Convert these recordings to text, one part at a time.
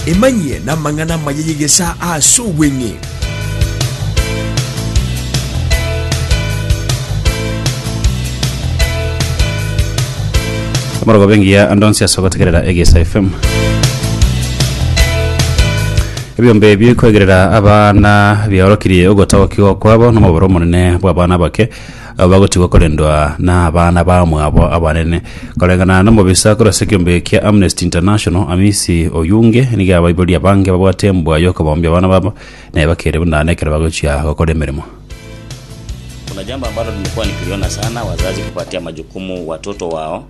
Emanyie namang'ana amaya y'egesaa aase obweng'e. Amorogo bengiya ande onsi ase ogotegerera Egesa FM. Ebiombe ebio kwegerera abana biaorokirie ogotagokigwa kwabo nomoboro omonene bw'abana abake Abagotigwa korendwa nabana bamwabo abanene. Koreng'ana nomobisa korwa ase ekeombe eke kia Amnesty International, Amisi Oyunge nigo abaiborie abange babwate embwa y'okobombia abana babo na ebakeire buna ane ekero bagochia gokora emeremo. Kuna jambo ambalo limekuwa nikiliona sana, wazazi kupatia majukumu watoto wao.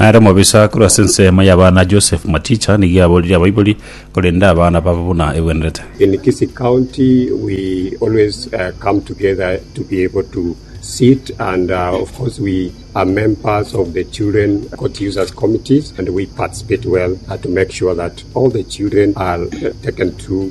Nere omobisa korwa ase ensemo y'abana Joseph Maticha nigo aboririe abaibori, korende abana babo buna egwenerete. In Kisii County, we always uh, come together to be able to sit, and uh, of course, we are members of the children court users committees, and we participate well uh, to make sure that all the children are uh, taken through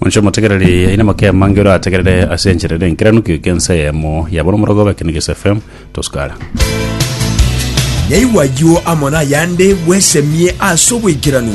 Monche omotegereri aine amake amange orategerere ase enchera ere enkeranukio ekensa eyemo yaba nomorogo obe Ekenegeso FM tosukara. Naigwa ayio amo nayande bwesemie ase oboikeranu.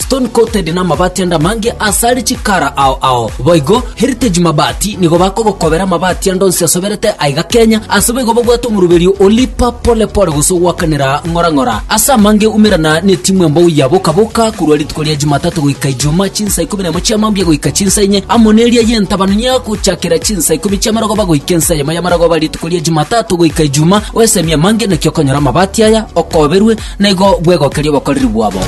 Stone coated namabati ande amange asare chikara ao ao. Boigo Heritage Mabati nigo bakogokobera amabati ande onsi asoberete aiga Kenya ase boigo babwate omoruberio o Lipa Pole Pole gose ogwakanera ng'ora ng'ora. Ase amange umerana netimu embou ya Boka Boka korwa rituko ria Jumatatu goika Ijumaa chinsa ikomi nemo chia mambia goika chinsa inye amo neria yentabanu ya gochakera chinsa ikomi chia marogoba goika ensa eyemo ya marogoba rituko ria Jumatatu goika Ijumaa oesemie amange naki okonyora amabati aya okoberwe naigo bwegokeria obokoreri bwabo.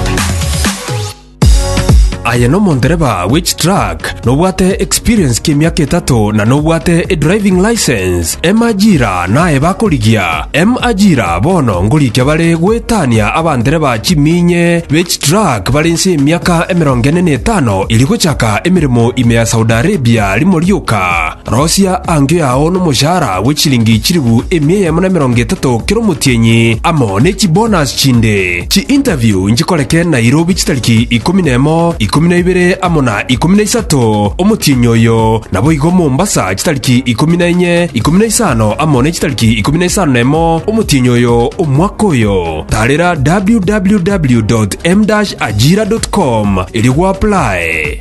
Aye no mondereba which track nobwate experience ki miaka etato na nobwate e driving license emajira naye bakorigia emajira bono ngorikia bare gwetania abandereba chiminye which track bare nse miaka emerongo ene na etano iri gochaka emeremo ime ya Saudi Arabia rimo rioka Rosia angio yao nomoshahara bwe chiringi chilifu emia eyemo na emerongo etato kera omotienyi, amo ne chibonus chinde. Chi-interview nchikoreke Nairobi chitariki ikomi na emo, ikomi na ibere amo na ikomi na isato omotienyi oyo, naboigo Mombasa chitariki ikomi na enye, ikomi na isano amo ne chitariki ikomi na isano na emo omotienyi oyo omwaka oyo. Tarera www.m-ajira.com erio gwaplae.